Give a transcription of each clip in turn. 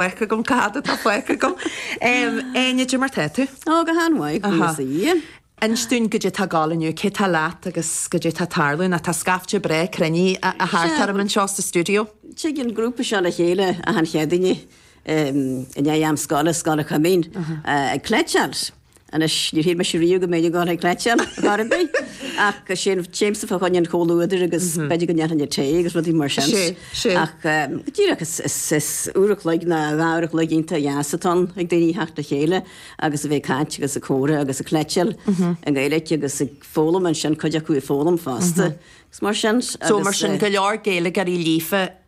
faic agam, cad atá faic agam? Éinne de mar tá tú? Ó, go han-mhaith, agus í. Inis dúinn cad é tá ag dul inniu, cé tá leat agus cad é tá ag tarlú ná tá scaifte breá cruinnithe thart orm anseo sa stiúideo. Tig an grúpa seo le chéile, achan Chéadaoin, i ndiaidh am scoile, Scoil an Choimín, ag cleiteáil. Anois, níor shíl mise riamh go mbeinn ag obair ag cleiteáil chor ar bith, ach ansin, téimse fá choinne an chomhluadair agus b'fhéidir go ndéanfainn an tae agus rudaí mar sin. Ach go díreach, is uair a chloig ná dhá uair a chloig iontach dheas atá ann ag daoine a theacht le chéile agus a bheith ag caint agus ag comhrá agus ag cleiteáil i nGaeilge agus ag foghlaim ansin, cuid acu ag foghlaim fosta agus mar sin. So mar sin, go leor Gaeilgeoirí líofa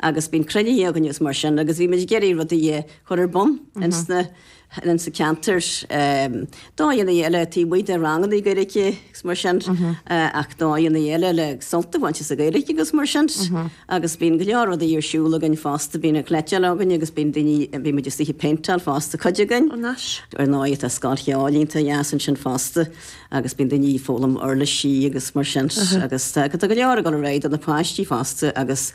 agus bíonn cruinniú againn agus mar sin agus bhí muid ag iarraidh rudaí a chur ar bun ins na, ins an ceantar. Dóigheannaí eile taobh amuigh de rangannaí Gaeilge agus mar sin ach dóigheannaí eile le sult a bhaint as an Ghaeilge agus mar sin agus bíonn go leor rudaí ar siúl againn fosta, bíonn an cleiteáil againn agus bíonn daoine, bíonn muid is dóiche ag péinteáil fosta cuid againn. Ó nice. Ar ndóighe tá scoil cheoil iontach dheas ansin fosta agus bíonn daoine ag foghlaim uirlisí agus mar sin agus tá go leor ag dul ar aghaidh do na páistí fosta agus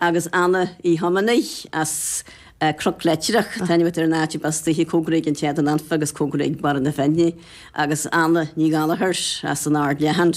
agus Anna Uí Thiománaí as Cnoc Leitreach, taitneamhacht ar an áit a bpostaíthí cóngarach don Éadan Anfach agus cóngarach do Bhaile na Finne, agus Anna Ní Ghallchóir as an Ard Leathan,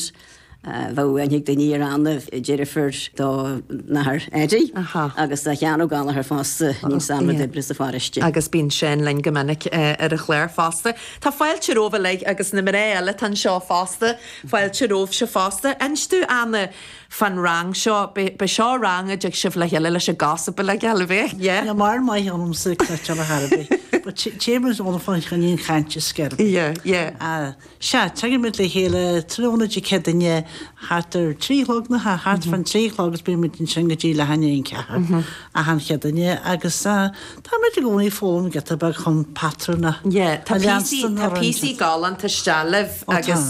bheadh aithne ag daoine ar Anna, deirfiúr don Athair Eddie, agus Seán Ó Gallchóir fosta, níos ama d'oibrigh sa pharóiste. agus bíonn Seán linn go minic ar an chlár fosta. Tá fáilte romhaibh uilig, agus na mná eile atá anseo fosta, fáilte romhaibhse fosta. Inis dúinn, Anna. fán rang seo. Beidh seo rang a dtig sibh le chéile leis an gcása ba le geal a bheith, yeah? Yeah, níl maith ionamsa ag cleiteáil ar chor ar bith, but téimid ann fá choinne an chaint is sceirbí. Yeah, yeah. Sea, tagaimid le chéile tráthnóna Dé Céadaoin, thart ar a trí a chlog nach ea, thart fán trí a chlog agus bímid ansin go dtí leath i ndiaidh a 4 achan Chéadaoin agus táimid i gcónaí ag foghlaim giota beag chun patrúin a leanstan a roinnt. Tá píosaí galánta isteach libh agus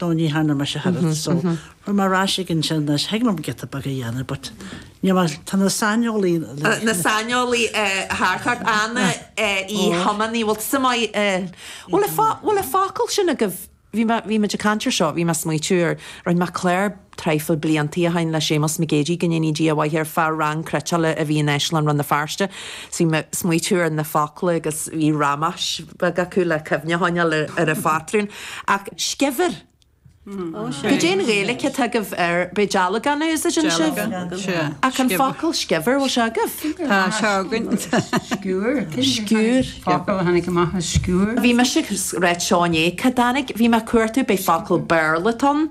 no ní tharla mise thar fhad so raibh mé ar ais ag an sin is thig liom giota beag a dhéanamh but níl mé, tá na saineolaí, na saineolaithe thart ort, Anna Uí Thiománaí, bhfuil tusa maith i, bhfuil a, bhfuil an focal sin agaibh, bhí mé, bhí muid ag caint ar seo, bhí mé ag smaoitiú ar, rinn mé clár, traidhfil bliantaí ó shin le Séamus Mac Géidigh go ndéanaí Dia a mhaith air, fá rang cleiteála a bhí in Áislann Rann na Feirste. Is bhí mé ag smaoitiú ar na focla agus bhí ramáis beaga acu le cuimhne a choinneáil ar an phatrún. Ach scibhéar? Cad é an Ghaeilic atá agaibh air? B'fhéidir dealgán a úsáideann sibh? Ach an focal scibhéar, bhfuil sé agaibh? Tá, tá sé againn. Skewer. Focal a tháinig amach as skewer. Bhí mise ag rá sin é. Cá dtáinig? Bhí mé ag cuartú b'fhéidir focal Béarla atá ann.